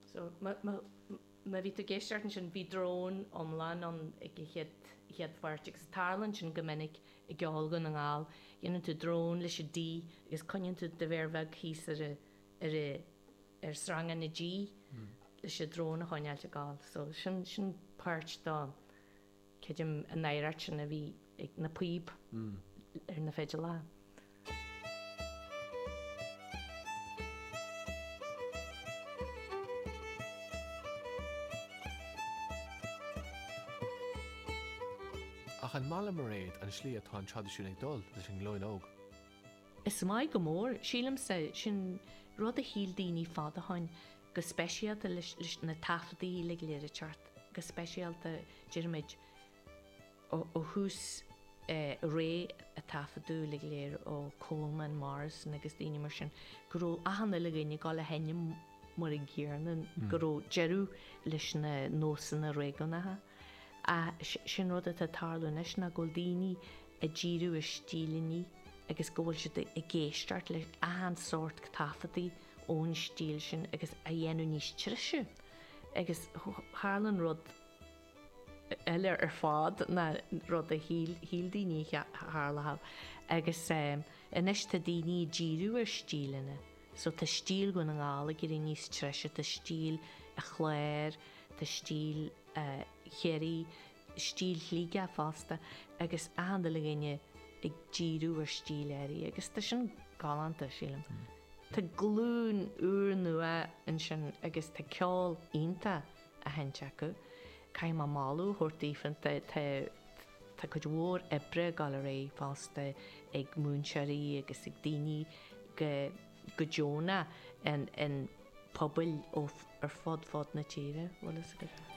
So, má bhí tú ag éisteacht ansin bhí drón iomlán agam ag an chéad, chéad pháirt, agus tarlaíonn sin go minic i gceol Dhún na nGall, dhéanann tú drón leis an D agus coinníonn tú do mhéar bheag thíos ar ar ar sreanga na G leis an drón a choinneáilt ag gabháil. So, sin, sin páirt dó. Creidim an oighreacht sin a bhí ag na píob ar na fidléirí. Ach an maith le Mairéad an slí atá an traidisiún ag dul leis an nglúin óg? Is maith go mór. Sílimse, sin rud a shíl daoine fad ó shoin, go speisialta leis na taifeadtaí uilig go léir atá thart, go speisialta déarfaimid ó thús ré a taifeadadh uilig go léir ó Coleman, Morrison agus daoine mar sin go raibh achan uile dhuine ag dul a sheinm mar an gcéanna go raibh deireadh leis na nósanna réigiúnacha. Sin rud atá ag tarlú anois ná go bhfuil daoine ag díriú ar stíleanna agus go bhfuil siad ag éisteacht le achan sórt taifeadtaí, ón stíl sin agus á dhéanamh níos treise agus tarlaíonn rud eile ar fad ná rud a shíl daoine a tharlódh agus anois tá daoine ag díriú ar stíleanna so tá stíl Dhún na nGall ag éirí níos treise, tá stíl a' Chláir, tá stíl Chiarraí. stíl Shligigh fosta agus achan uile dhuine ag díriú ar stíl áirithe agus tá sin galánta, sílim. Tá glúin úrnua ansin agus tá ceol iontach á sheinnt acu. Caithfidh mé moladh a thabhairt daofa, tá, tá, tá cuid mhór oibre ag dul ar aghaidh fosta ag múinteoirí agus ag daoine go, go deonach in, in pobail ó, ar fud, fud na tíre, bhfuil fhios agat.